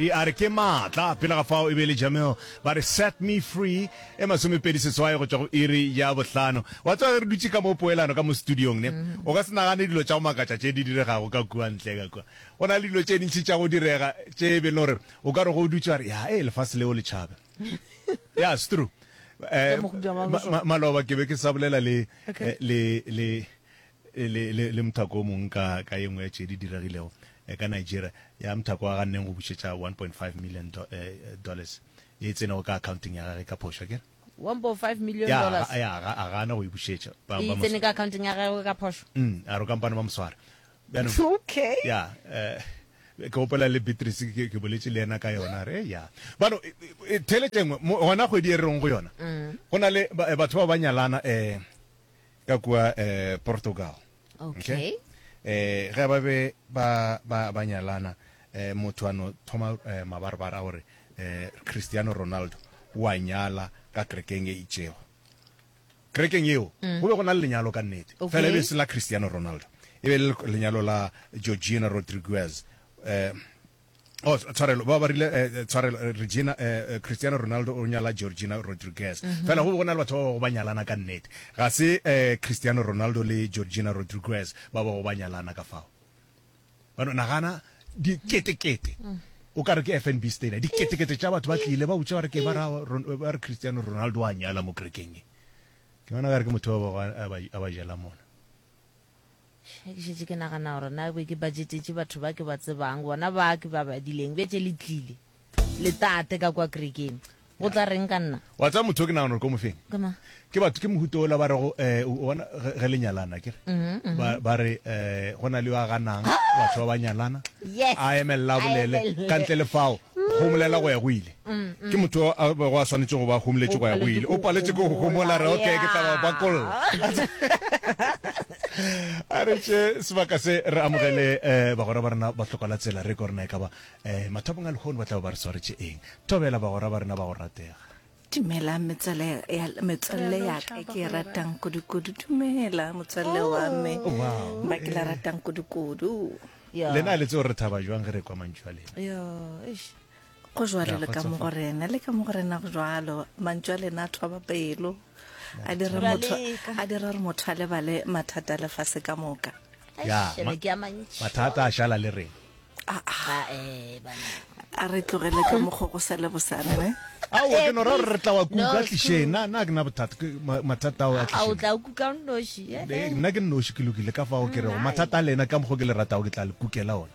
Di a re ke maatla. Pele ga fao e be e le Jamil. Ba re Set Me Free e masomepedi seswai go tšwa go iri ya bohlano. Wa tseba ge re dutše ka mo poelano ka mo studiong ne, o ka se nagane dilo tša go makatša tše di diregago ka kua ntle ka kua. Go na le dilo tše ntši tša go direga tše e be le gore o ka re ge o dutše wa re, Ya ee, lefase leo le tšhabe. Ya, it's true. Eh, ma, ma, maloba ke be ke sa bolela le, le, le, Le, le, le mothako o mongwe ka, ka ye nngwe ya tše di diregilego eh, ka Nigeria, ya mothako wa ganneng go bušetša 1.5 million do, eh, eh, dollars ye e tsenego ka akhaonteng ya gagwe ka phošo, a ke re? 1.5 million Ya, dollars ga, ya, ga, a gana go e bušetša. Ba, e ba mo, tsene ka akhaonteng ya gagwe ka phošo. mm, a re kampane ba mo swara. Bjanong, Okay. ya, eh, ke gopola le Beatrice ke, ke boletše le yena ka yona, a re, "Eh, ya. Bano, e, e, e, theeletše nngwe, mo- gona kgwedi e re reng go yona, go na le ba, eh, batho bao ba nyalana, eh, ka kua eh, portugal okay eh ge ba be ba ba ba nyalana eh motho a no thoma eh, mabarabara a gore eh cristiano ronaldo wa nyala ka kerekeng e itšego kerekeng yeo go be go na le lenyalo ka nnete Mm. Okay. fela e be se la cristiano ronaldo e be le lenyalo la georgina rodriguez eh Oh, tshwarelo ba ba rile eh, eh, tshwarelo eh, Regina eh, Cristiano Ronaldo o nyala Georgina Rodriguez mm -hmm. fela go be go na le batho ba bago ba nyalana ka nnete ga se eh, Cristiano Ronaldo le Georgina Rodriguez ba bago ba nyalana ka fao bano nagana diketekete mm -hmm o ka re ke fnb stadium diketekete tša batho ba tlile ba utša gore ke ba re cristiano ronaldo a nyala mo kerekeng ke bona ka re ke motho a ba jela mona Ge ke šetše ke nagana gore na be ke bajetetše batho ba ke ba tsebang, bona ba ke ba badileng, bjetše le tlile le tate ka kwa kerekeng, go tla reng ka nna? Wa tseba motho o ke nagana gore ke o mo feng? Ke mang? Ke batho, ke mohuta ola ba rego, um o bona, ge, ge le nyalana, akere, ba, ba re, um go na le yo a ganang, batho ba ba nyalana, Yes! a emelela a bolele Aemelele. ka ntle le fao, go bolela go ya go ile. Ke motho yo a bego a swanetše go ba humletše kwa ya go ile. O paletše ke go homola, re, Okay, ke tla ba bakolla. A re tše sebaka se re amogele um bagwera ba rena ba hloka la tsela, re gore na e ka ba um mathapong a lehono ba tla be ba re swaretše eng. Thobela bagwera ba rena ba go ratega. Dumelang metswalle ya, metswalle ya ka ke e ratang kudu-kudu. Dumela motswalle wa me ba ke le ratang kudu-kudu. Lena le tseo re thaba jwang ge re ekwa mantšu a lena. go jwalo le ka mo go rena le ka mo go rena go jwalo mantšu a lena a thoba pelo a dira motho a dira gore motho a lebale mathata a lefase ka moka ya Eish, ma- ebe ke a mantši. mathata a šala le rena Ba, eh, bana. a re tlogele ka mokgo go sa le bosane ne ao ke no ra gore re tla wa kuka No, tlišeng na na ke na bothata ke ma- mathata ao a a o tlišeng tla o kuka o nnoši eh, Eh, eh. nna ke nnoši ke lokile ka fao ke rego mathata a lena ka mokgo ke le ratago ke tla le kukela ona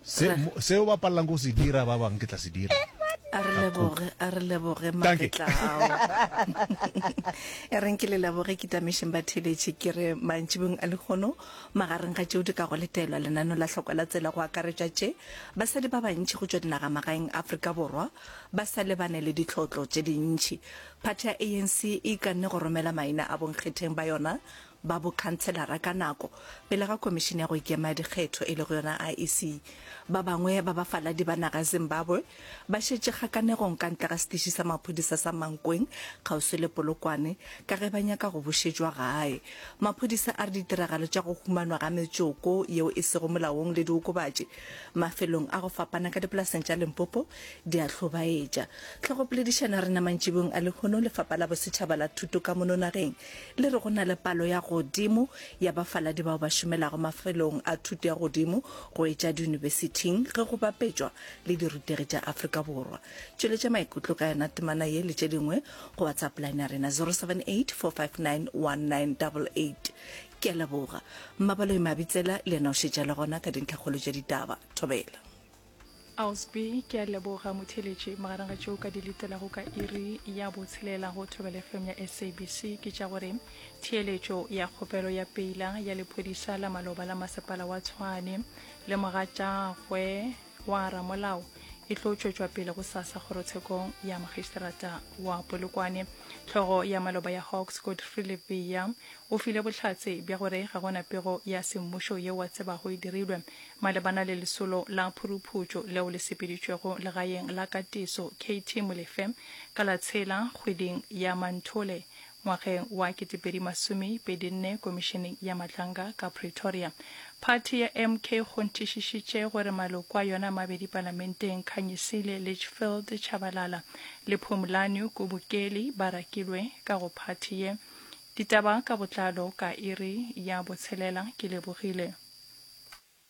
Se, seo ba palelang go se dira ba bang ke tla se dira. a re leboge a re leboge Dankie. magetla ao e reng ke le leboge ke tamešeng ba theletše ke re mantšibong a lekgono magareng ga tšeo di ka go letelwa lenaneo la hloko la tsela go akaretša tše basadi ba bantši go tšwa dinagamagaeng afrika borwa ba sa lebane le ditlhotlo tše dintši phathi ya anc e ikanne go romela maina a bonkgetheng ba yona ba bokhanselara ka nako pele ga komišene ya go ikema dikgetho e lego yona iec ba bangwe ba bafaladi ba naga zimbabwe ba šetše kgakanegong ka ntle ga setiši sa maphodisa sa mankweng kgauswi le polokwane ka ge ba nyaka go bušetšwa gae maphodisa a re ditiragalo tša go humanwa ga metsoko yeo e sego molaong le diokobatši mafelong a go fapana ka dipolaseng tša limpopo di a hlobaetša tlhogopoledišano ya rena mantšibong a lehono lefapa la bosetšhaba la thuto ka mono nageng Le re go na le palo ya godimo ya bafaladi bao ba šomelago mafelong a thuto ya godimo go etša diyunibesithing ge go bapetšwa le dirutegi tša Afrika Borwa. Tšweletša maikutlo ka yona temana ye le tše dingwe go WhatsApp line ya rena 078 459 1988. Ke a leboga. Mmabaloi Mabitsela le yena o šetše a le gona ka dintlhakgolo tša ditaba. Thobela. Ausby, ke a leboga motheletši. Magareng ga tšeo ka di letelago ka iri ya botshelela go thobele fm ya sabc ke tša gore theeletšo ya kgopelo ya peila ya lephodisa la maloba la masepala wa tshwane le mogatšagwe wa ramolao e tlo tšwetšwa pele go sasa kgorotshekong ya magistrata wa polokwane tlhogo ya maloba ya hawks godfrey levea o file bohlatse bja gore ga gona pego ya semmušo yeo a tsebago e dirilwe Malebana le lesolo la phuruphutšo leo le sepeditšwego legaeng la katiso KT Molefe ka la tshela kgweding ya Manthole ngwageng wa ketepedi masome pedi nne komišeneng ya matlanga ka Pretoria, phathi ya MK kgonthišišitše gore maloko a yona a mabedi palamenteng Khanyisile Litchfield Tshabalala le Phumlani Kubukeli ba rakilwe ka go phathi ye. Ditaba ka botlalo ka iri ya botshelela. Ke lebogile.